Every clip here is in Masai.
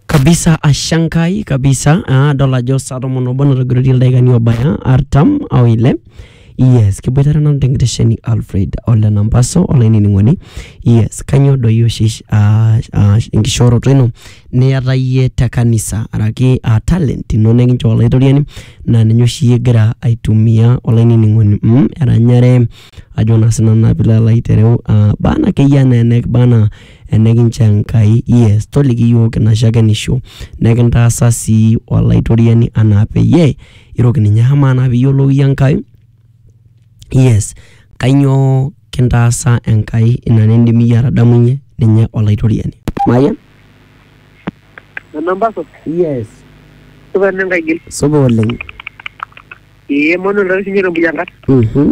kabisa ashankai kabisa ah, adol ajo saa tomon obo natogirotie ildaikani obaya artam au ile yes kiboitare nanu tenkitesheni alfred ole nampaso olainining'oni yes kanyoo doi oshi ah, ah, enkishooroto ino niyata iyie te kanisa araki ah, talent ino nikinchoo olaitoriani naa ninye oshi iyie igira aitumia olainining'oni mm, eranyare ajo naa sinanu naa piilo alo aitereu ah, bana akeyie anaa enek bana Enikincho Enkai, yes, toliki iyiook ina shakenisho, nekintaasa sii Olaitoriani anaa peyie iroki ninye. Amaa naa pee iyiolou iyie Enkai, yes, kainyoo kintaasa Enkai ina nindim iyie atadamunye ninye Olaitoriani? Mayian? Enamba supa. Yes. Supa ena Enkai gil. Supa oleng. Ee Emmanuel taa oshi ninye te Mbuyiankat. Mhm.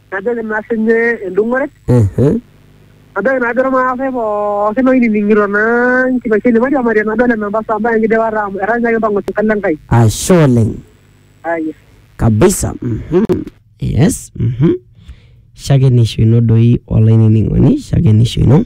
najoki naa sinye endung'ore Ehe. najoki naa ajo irmaasai pookin oinining'ito naa nkipaisho ene mairiamari nadol ena mbasa mbaya enkidipata amu etaa ninye kimpang'u sirkali Enkai Ashe oleng. aya Kabisa. Mhm. Yes. Mhm. Shakenisho ino doi olainining'oni, shakenisho ino.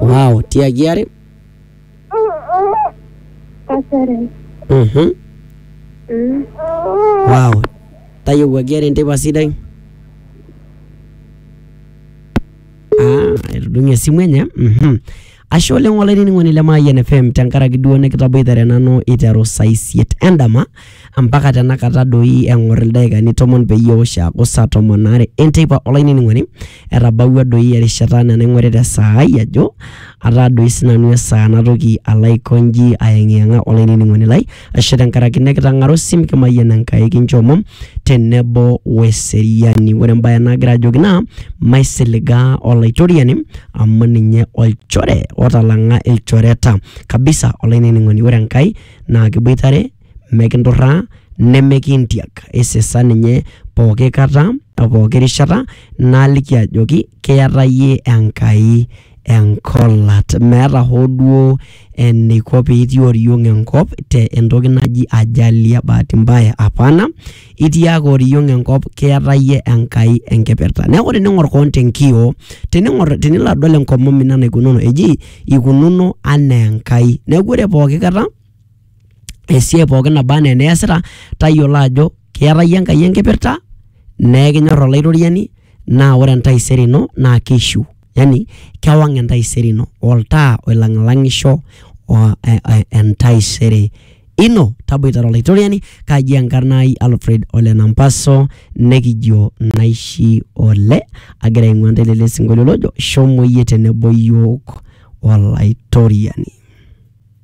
Wow, tiagi are. Kasere. Mhm. Mm. Wow. Tayiewuaki are enteipa sidai. Ah, etudung'e esimu enye. Mhm. Ashe oleng olainining'oni le Mayian FM tenkaraki duo nikitaboitare nanu iteru saa isiet endama. ampaka tenakata doi eng'or ildaikani tomon peyie eosh aaku saa tomon aare enteipa olainining'oni etabawua doi erishata anaa enaing'orita esaa ai ajo ataa doi sinanu esaa natoki alo aikonji ayeng'iyeng'a olainining'oni lai ashe tenkaraki nekitang'ara osim kimayian Enkai kincho omom tenebo weseriani ore embaye nagira ajoki naa maisiligaa olaitoriani amu ninye olchore otalang'a ilchoreta kabisa olainining'oni ore Enkai naa kiboitare, mekinturraa, nemekintiak. Isisa ninye pooki kata o pooki rishata naaliki ajoki kiata iyie Enkai enkolat. Meeta hoo duo eniko piitii oriong enkop te entoki naji ajali e bahati mbaya, hapana itiaka oriong enkop keeta iyie Enkai enkipirta. Neeku tening'or koon tenkioo, tening'or tenilo adol enkomom ino enaikununo eji ikununo anaa Enkai. Neeku ore pooki kata esiai pooki naba enaa eniasita tayiolo ajo keeta iyie Enkai enkipirta naa ekinyor Olaitoriani naa ore entaisere ino naa keishiu yani kewang entaisere ino, oltaa oilang'ilang'isho o e- e- entaisere ino taboitare olaitoriani kaji enkarna ai alfred ole nampaso nekijo naishi ole agira aing'ua ntae lele sinkolio lojo shomo iyie tenebo yiok olaitoriani